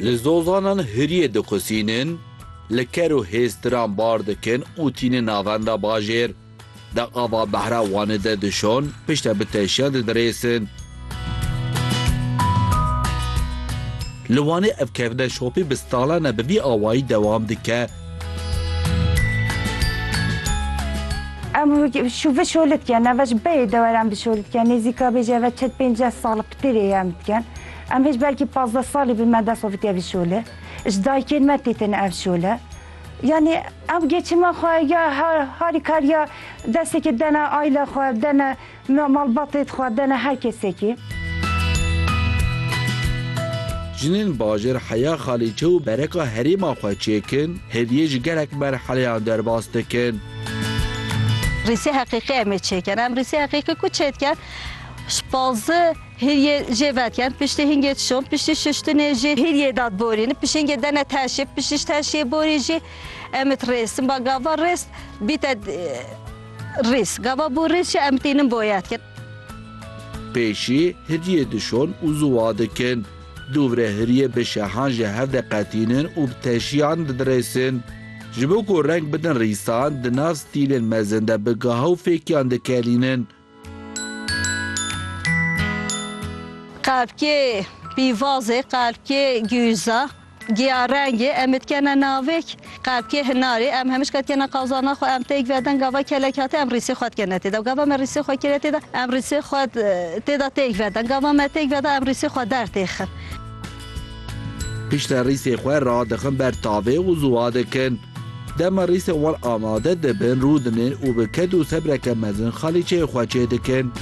Li zozanan hiriyê dixusînin, li ker û hêztiran bar dikin û tînin navenda bajêr. Di ava behra Wanê de dişon, piştre bi teşiyan didirêsin. Li Wanê ev kevine şopî bi salan e bi vî awayî dewam dike. Em şûve şolê dikin, eve ji beyê deweran bi şolê dikin. Nêzîka bêje eve çet pênceh sal ptirê em dikin. Em hêj belkî pazdeh salî bi me desovitiye vî şole. Ji dayikên me tê têne ev şole. Yanî ew geçima xwe ya harîkariya destekê dene aîle xwe, dene malbatê xwe, dene her kesekî. Jinên bajêr heya xalîçe û bereka herêma xwe çêkin, hêviyê ji gelek merheleyan derbas dikin. Rîsê heqîqî em ê çêkin. Em rîsê heqîqî ku çêdikin, ji pazdeh. Hêriyê jê vetiyen, piştî hingê çişon, piştî şiştinê jî hêriyê dad borîn, pişingê dene teşê, piştî teşê borî jî em it rêsin. Ba gava rês bîte rîs. Gava bû rîs jî em tînin boyet kin. Pêşî hêriyê dişon û ziwa dikin. Dûvre hêriyê bi şehan ji hev de qetînin û bi teşiyan didirêsin. Ji bo ku reng bidin rîsan, di nav stîlên mezin de bi gaha û fêkiyan dikelînin. Qelpkê pîvazê, qelpkê gûza, giya rengê em ê dikene navêk. Qelpkê hinarê em hemijka dikene qazana xwe, em têk veden gava kelek hate em rîsê xwe dikene tê de. Gava me rîsê xwe kire tê de em rîsê xwe tê de têk veden. Gava me têk veda em rîsê xwe dertêxin. Piştre rîsê xwe radixin ber tavê û ziwa dikin. Dema rîsên wan amade dibin rûdinin û bi ked û sebreke mezin xalîçeyê xwe çê dikin.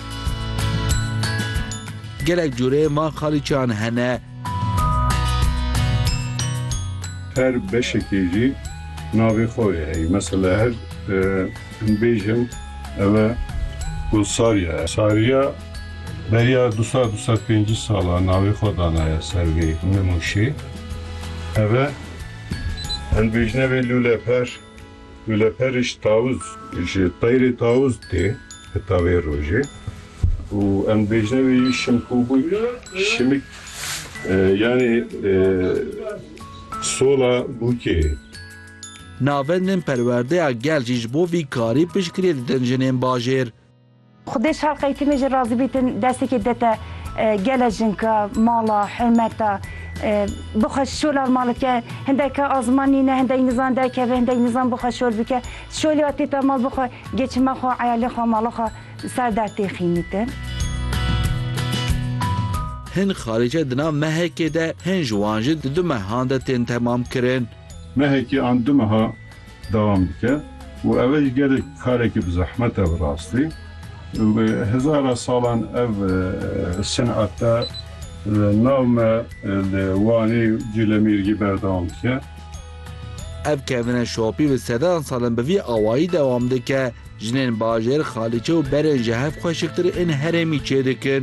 Gelek cûreyên van xalîçeyan hene. Her beşekê jî navê xwe yê heyî. Mesele her him bêjin ev e ku sariye. Sariya. Beriya du sed û sed û pêncî salan navê xwe danaye ser vê nimûşê. Ev e hilbêjine vê lûleper, lûleperê ji tawûz, ji teyrê tawûz tê heta vê rojê û em dibêjine vê yê şimkûbûy, şimik yanî sola bûkê. Navendên perwerdeya gel jî ji bo vî karî piştgirê didin jinên bajêr. Xwedê şer qeytînê ji razî bîtin destekê dete gele jinka mala hurmeta bixwe şolar malike hindek ke azman nîne hindek nizan derkeve hindek nizan bixwe şol bike şolê atê te mal bixwe geçime xwe eyalê xwe mala xwe ser der tê xînîtin. Hin xalîce di nav mehekê de hin ji wan jî di du mehan de tên temamkirin. Mehekê an du meha dewam dike û ev e jî gelek karekî bi zehmet e bi rastî. Bi hezara salan ev senet e li nav me li Wanê û Cîlemêrgê berdewam dike. Ev kevine şopî bi sedan sal in bi vî awayî dewam dike. Jinên bajêr, Xalîçe û berên ji hev xweşiktir ên herêmî çêdikin.